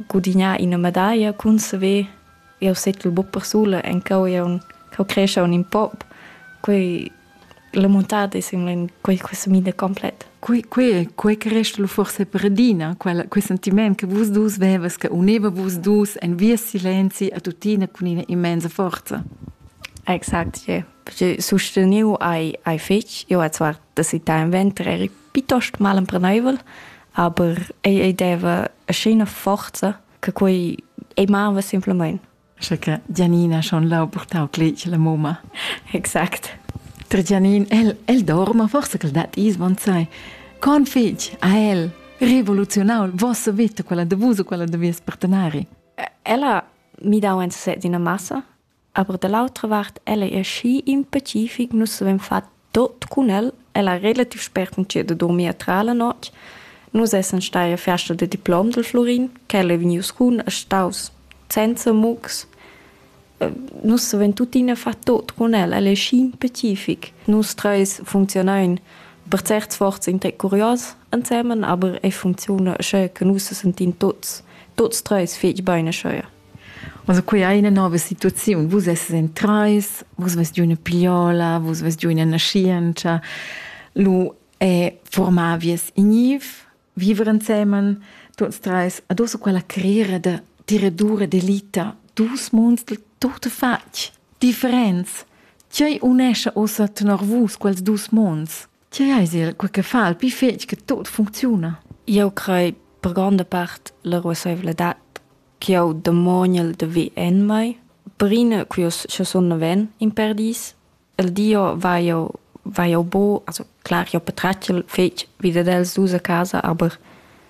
gudignà ina medaglia cun saver jau settel buc persula encau jau cheu crescha un pop quei la montada semblan quei questa mida completa quei quei quei che resta lu forse per adina quel quei sentiment che vus dus vevas che uneva vus dus en via silenzi a tutina cun ina immensa forza Exakt, ja. Je susteniu ai ai fetch, io a zwar, dass ich da im Winter Piuttost malempreneivel, aber ei, ei deva scena forza che quei ei mava simplemente. Sche che Gianina schon lau purtau cletg la moma. Exact. Tra Gianin, el, el dorma, forse che dat is von sai. Con fig a el revoluzionau il vostro vita, quella de vus o quella de vies partenari? Ella mi dau en sesset d'una massa Aber da l'autra vart el ei aschi impacific, nus havein fatg tot cun el, el ha relativ spert entschiet da durmir tra la notg. Nus essan stai a fiasta da diplom del Florin, quel ei vegnius cun e staus senza mugs. Nus havein tuttina fatg tot cun el, el ei schi impacific. Nus treis funzionein per certs sforzs intec curios ensemen, aber ei funcziuna sche che nus sentin tots, tots treis fetg bein aschia. Also quei ei ina nova situaziun. Vus esses en trais, vus vest giu ina pigliola, vus vest giu ina naschientscha. Lu è formar vies igniv, viver ensemen, tuts treis, adosso quella carriera da tiradura d'elita, dus munds del tutto fatg, differents. Tgei unescha ossa tenor vus quels dus munds? Tgei eis il quei che fa il pli fetg che tot funcziuna? Eu crei per gronda part la ruasseivladad ch'eu demoniel da ver en mai. Prima che sche sun naven in perdis, il dio va eu va eu bo, also clar, eu patratgel fetg vi dad els dus a casa, aber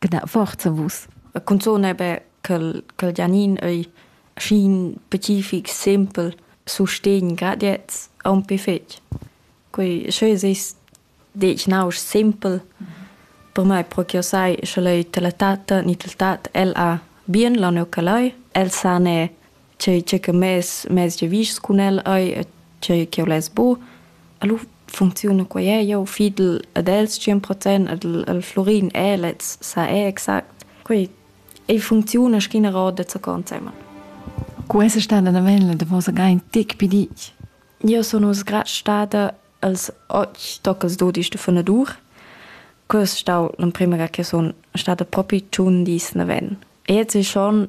Gna forza vus. Cunzun ei be ch'el ch'el Gianin ei schin pacific, simpel, sustegn, grad gliez aunc fetg. Quei sch'ei seis detg nausch simpel, per mei propi sai, sch'el ei tel tat ni tel tat, el ha bien launau ch'el ei, el sa ne tgei tgei che mes mes giavischs cun el ei tgei che less bu alu funcziuna quei è eu fidel ad els 100 procent ad al Florin è lez sa è exact quei ei funcziuna schina roda zu consema Questa stada da vella da vosa gai tic pidich. Io sono sgrat stada als och docas dodisch de funadur. Quest stau l'emprima che son stada propi tun dis na ven. E jetzt ist schon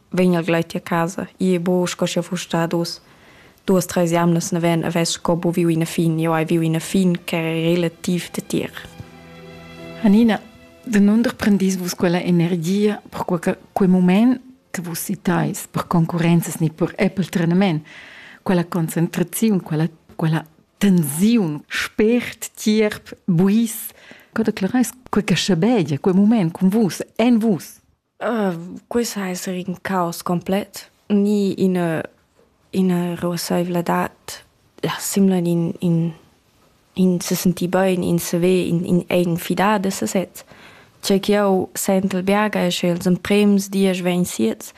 vegn al gleit a casa. Ie bo sco sche fus stat dus duas treis jamnas neven aves sco bo viu ina fin. Jo hai viu ina fin che è relativ detir. Anina, de non prendis vus quella energia per quel, quel moment che vus citais per concorrenzas ni per Apple trenament, quella concentrazione, quella, quella tensiun, spert, tierp, buis, co declarais quel che schabegia, quel moment con vus, en vus. Quist ha esser ün caos complet, ni üna üna ruossaivladad, la simla in in in se senti bain, in se ve, in in è in fidada sesez. Cha ch'eau sentel biaga es che els emprems diesch vegn siets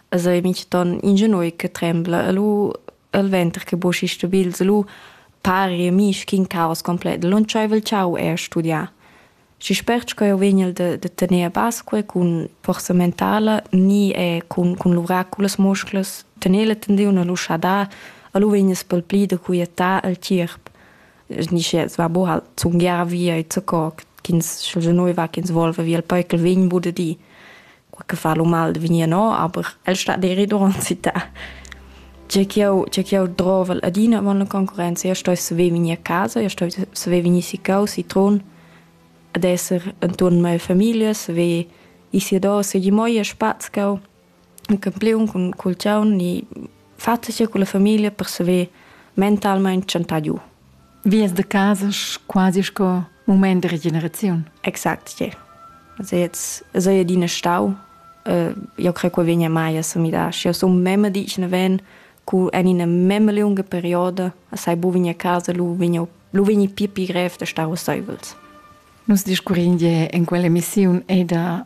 as ei mintgaton ingenui che trembla elu el venter che boschi stabils elu pari a mi sch'in caos complet. Lantschaivel ch'eau he studià. Schi spert sco eu vegnel da da tener a basco cun forsa mentala ni er cun cun luvrar cullas musclas, tener la tendüna a l'uschadà, a lu vegness pel pli da quiettar al tgierp. Snischers va bo halt zungiar via i zaccò ch'ins sch'el se noiva ch'ins volva via al pöi ch'el vegn bod a di. qualche fa lo mal de venir no, aber el sta deri durant città. Tge ch'io tge ch'io drovel adina man la concurenza, io sto saver venir a casa, io sto saver venir si cau, si trun, ad esser inturn mia famiglia, saver ì si adò, se gli moi a spaz cau, un campiun cun cul chaun ni fatg con la famiglia per saver mentalmein tschantar giu. Vias de casa quasi sco moment de regeneraziun. Exact, yeah. Also jetzt so ja dine stau. Uh, io credo che vegna mai a samidar. Și eu sunt meme dice ven cu en ina meme lunga perioda a sai bu vegna a casa lu vegna lu vegni pi pi grev de stau seuls. Nus discurrinde in quell'emissione è da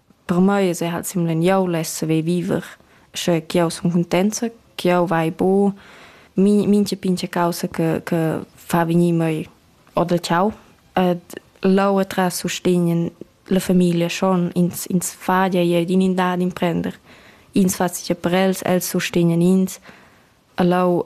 Per mei es eir halt simleniau less saver viver, sche ch'jau sun cuntenza, ch'jau vai buc min- mincha pincha causa che che fa vegnir mei or da chau. Ed leu atras sustegn la famiglia schon, ins ins fadia ir d'in in dad imprender. Ins fa sia per els, els sustegnan ins. E leu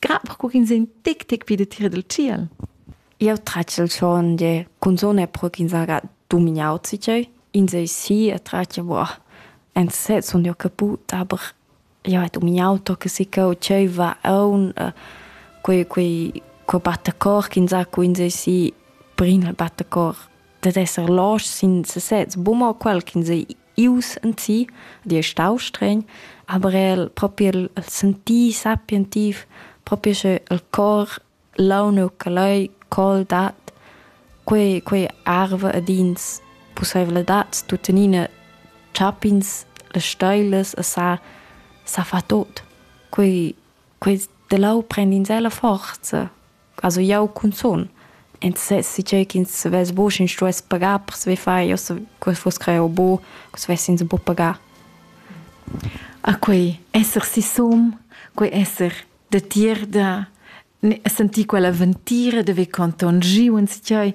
Grab co ch'ins è in tic tic pi datier dal tschiel. Jau tratg il chon de cunzone pro ch'ins haja dumignau zitgeu. Ins ei si e tratg boh, en sez sun jeu caput, aber jau hai dumignau to che sicau tscheu va aun, quei quei co batta cor ch'ins ha cu ins ei si, brin el batta cor. dat esser los sin sesez, buma quel ch'ins ei ius en si, di è stau stregn, aber el proprio il, il sentì sapientiv, proprio sche il cor launu che lei col dat, quei, quei arve ed ins possibilitads tuttenina chapins le steiles e sa, sa fa tot. Quei, quei de lau prend in sela forza. Also jau cunzun. Ensassi tgei ch'ins vess buc sch'ins stuess pagar per saver far. Io se quel fuss creau bu, ch'us vessins buc pagar. A quei esser sisum, quei esser datier da sentir quella ventira, da ver conton giu ins tgei.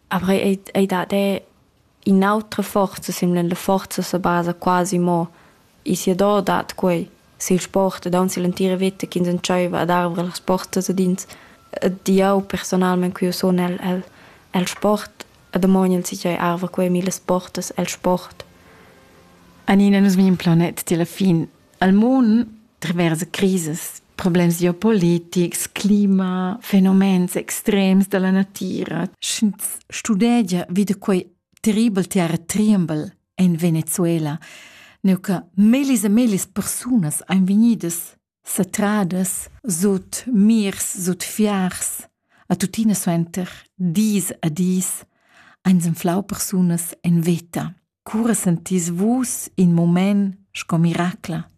Après ei, ei dat er in'autra forza simil la forza sa basa quasi mo e siador dat quei sil sport ed aunc sill'entira veta ch'ins entscheiva ad arver las portas ad ins. Ed jau personalmein che jeu sun el, el, el sport e damogn el sichei arva quei millas portas el sport. Anina, nus vegn in planet ti alla fin Al mund travers crisas, problems geopolitics, clima, fenomens extrems dalla natira. Sch'ins studegia vi da quei terribel teater Triembel en Venezuela, neu che mellis e mellis persunas ein vegnidas satradas sut mirs, sut fiars, a tuttina suenter dis a dis ein senflau persunas en veta. Cura sentis vus in mument sco miracla?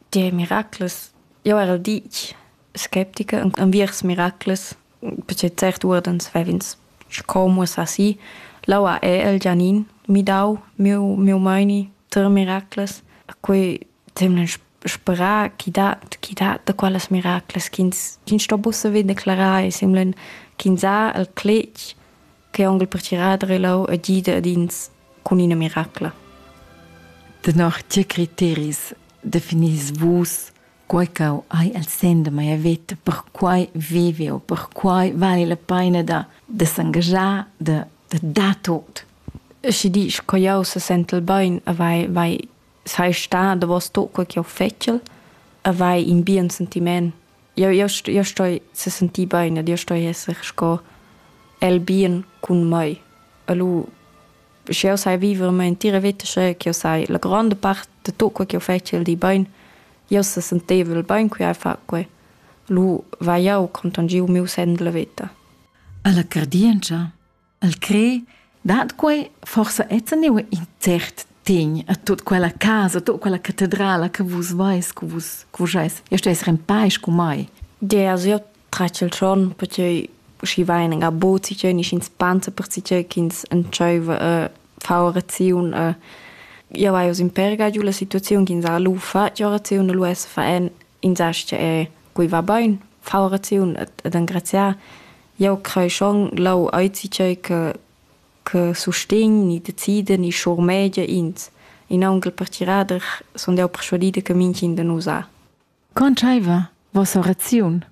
Tge miracles? Jau era ditg sceptica enviers miracles, perche cert uordens vev'ins sco muossà si. L'aua è el Gianin midau miu, miu meini ter miracles. Quei temlen sperà chi dat, chi dat da qualas miracles ch'ins, ch'ins sto buca declarar e semlen ch'ins ha el cletg che onkel pertgirar e lau e gida ad ins cun ina miracla. Tenor tge criteris definis vus quei ch'au hai el sen de mia veta, per quai vive o per quai vale la pena da, de s'engagiar, de, de dar tot. Schi disch co jau se sentel bein, vai, vai, sei sta da vos tot quel che jau fettel, e vai in bien sentiment Jau jau st- jau stoi sesentir bain ed io stoi esser sco el bien cun mai. E lu, sch'jeu sai viver mia entira veta sche ch'jeu sai la gronda part da tut quei ch'jeu fetschel di bain, jeu sesentevel bain qui a far quei. Lu vai jau contangiu miu senn della veta. Alla cardientscha? El cre dat quei forsa enzaniu in cert tegn a tut quella casa, a tut quella catedrala che vus veis, che vus, che vus eis. Io steis in pais cu mai. Geas io traccio il giorno, perché schi vain en abot, si c'è niscin spanza per si c'è ch'ins entscheiva a fare orazione. A... Io vaius in perga giù la situazione ch'ins ha lu fa, che orazione lu es fa en, ins sa che quei va bain, fa orazione ed engraziar. Jau crai schon ch'jau hai tgei che che sustegn ni decida ni schurmegia ins. In aunc per tgirader sun jau perschuadida che mintgin da nus ha. Contscheiva vossa raziun?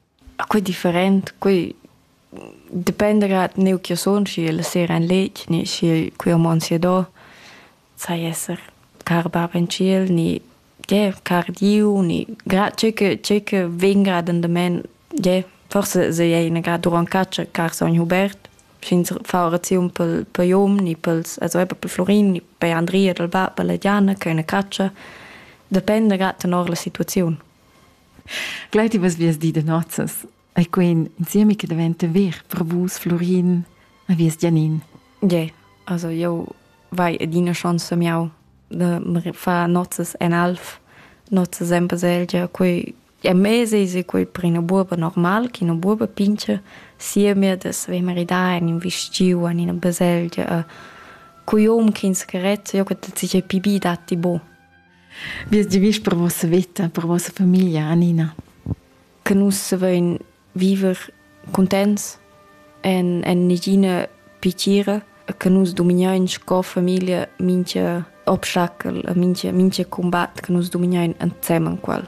Quei different, quei dependa grad neu che sun, schi la sera ein letg ni schi quei ho mon sia do. sai esser car bab in tschiel ni gie car Diu ni gra tgei che tgei che vegn grad endament gie forse se ei ina grad duront catscha car sogn Hubert sch'ins fa oraziun pel per Jom ni pels also eben pel Florin ni bei Andrea dal bab e la Diana che eine catscha dependa grad tenor la situaziun. Gleiti vas vias di de nozzas. E queen insieme che diventa ver per vus Florin e vies Gianin. Yeah, also io vai adina chance miau de fa nozzes en alf nozzes en baselgia quei e mese se quei per una buoba normal che una buoba pince sia mir des ve maridar in un vestgiu in una baselgia a cui om ch'ins carezza io che sich pibi datti bo. Wie ist die Wisch per vossa Vita, per vossa Familie, Anina? che nus savein viver cuntents en, en negina pittira che nus dominein sco famiglia mintga obstacol e mintga, mintga combat che nus dominein ensemen quel.